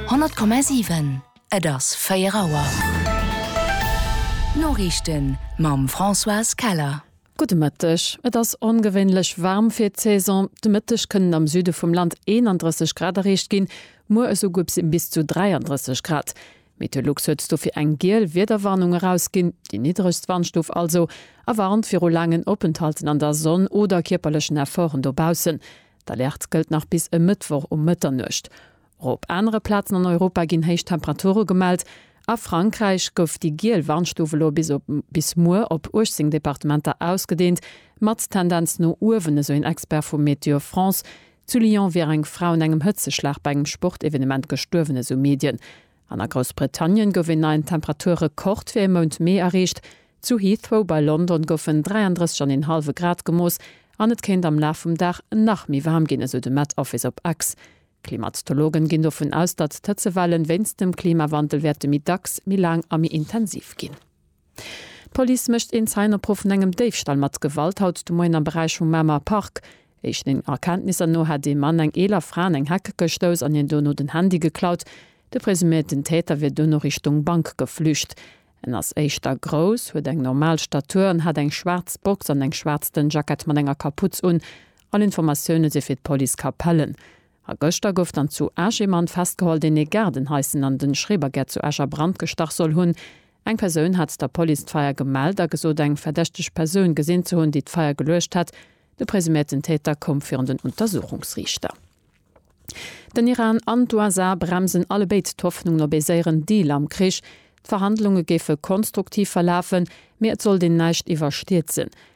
100,7 Et ass 4 Auer. D'Noriichten mam Françoise Keller. Gudde Mëtteg. Et ass ongewéinlech waarm fir d'Saison. De Mëtteg kënnen am Süde vum Land 31 Grad erreecht ginn, muer esouguer bis zu 33 Grad. Meteolux huet dofir eng giel Wiederwarnung erausginn, déi niddregst Wandstuf also, a warnt viru laangen Openthalten an der Sonn oder kierperlechen Efforten dobaussen. D'Alerte gëllt nach bis e Mëttwoch um Mëtternuecht. Och op anere Plazen an Europa ginn héich Temperature gemellt. A Frankräich gouf déi giel Warnstuf elo bis op bis muer op 18 Departementer ausgedeent, mat Tendenz no uewen, esou een Expert vu Météo France. Zu Lyon wier eng Fra un engem Hëtzeschlag bei engem Sportevenement gestuerwen, esou Medien. An a Groussbritannien gouf een neien Temperaturrekord fir e Mount Mee erreecht. Zu Heathrow bei London goufen 33 an een hallwe Grad gemooss an et kéint am Laf vum Dag nach méi waarm ginn, esou de Met Office op X. Klimatologen ginn dovun aus, datt d'Hëtzewellen wéinst dem Klimawandel wäerte méi dacks, méi laang a méi intensiv ginn. D'Police mécht een Zäinopruf vun engem Déifstall mat Gewalt haut de Moien am Beräich vum Mamer Park. Éischten Erkenntnisser no hätt ee Mann eng eeler Fra an eng Heck gestouss an hir dono den Handy geklaut. De presuméierten Täter wier dono Richtung Bank geflücht. En ass éischter grouss, huet eng normal Statur an hat eng schwaarz Box an eng schwaarz dënn Jackett mat enger Kaputz un. All Informatioune si fir d'Police Capellen. A gëschter gouf dann zu Esch ee Mann festgeholl, deen ee Gaardenhaiszen an de Schrebergärt zu Esch a Brand gestach soll hunn. Eng Persoun hat der Police d'Feier gemellt a gesot, eng verdächteg Persoun gesinn ze hunn, déi d'Feier geluecht hätt. De presuméierten Täter koum virun den Untersuchungsriichter. Den Iran an d'USA bremsen allebéid d'Hoffnungen op ee séieren Deal am Krich. D'Verhandlunge géife konstruktiv verlafen, mee et sollt een näischt iwwerstierzen.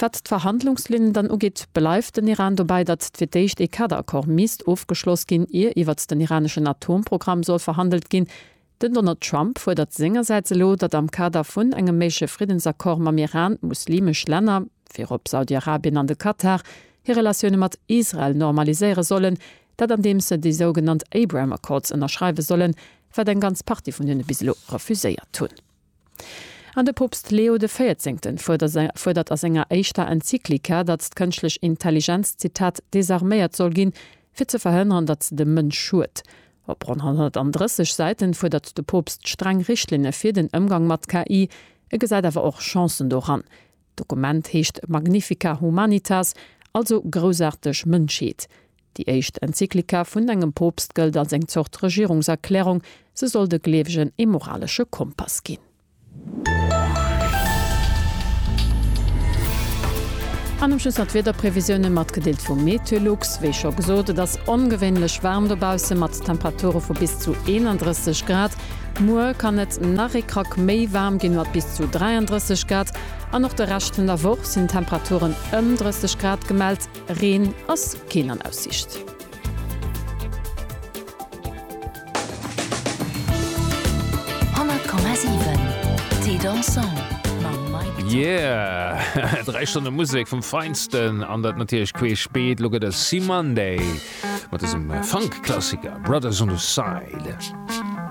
Wat d'Verhandlungslinn dann ugeet, bleift den Iran dobäi, datt fir d'éischt ee Kaderaccord misst ofgeschloss ginn, ier iwwert den iraneschen Atomprogramm soll verhandelt ginn. Den Donald Trump fuerdert sengersäits elo, datt am Kader vun engem méigleche Friddensaccord mam Iran, muslimesch Länner, virop Saudi-Arabien an de Katar, hir Relatioune mat Israel normaliséiere sollen, dat andeems se déi sougenannt Abraham Accords ënnerschreiwe sollen, wat eng ganz Partie vun hinne bis elo refuséiert hunn. An de Poopst Leo de Véierzéngten fuerdert a senger éischter Enzyklika, datt d'kënschtlech Intelligenz, Zitat, desarméiert soll ginn, fir ze verhënneren, datt se dem Mënsch schued. Op ronn 130 Säiten fuerdert de Poopst streng Richtlinne fir den Ëmgang mat KI. E gesäit awer och Chancen doran. D'Dokument heescht Magnifica Humanitas, also Groussaarteg Mënschheet. Déi éischt Enzyklika vun engem Poopst gëllt als eng Zort Regierungserklärung, se soll de Gleewegen ee moralesche Kompass ginn. An um Schluss nach d'Wiederprevisiounen, matgedeelt vum Meteolux. Wéi scho gesot, et ass ongewéinlech waarm dobausse mat Temperature vu bis zu 31 Grad. Muer kann et nach ee Krack méi waarm ginn, mat bis zu 33 Grad. An och de Rescht vun der Woch sinn Temperaturen ëm 30 Grad gemellt. Reen ass keen an Aussicht. Yeah! 3 Stonne Musek vum Feinsten an dat natierlech queeschbeet. Elo gëtt et Cymande mat dësem Funk-Klassiker Brothers on the Side.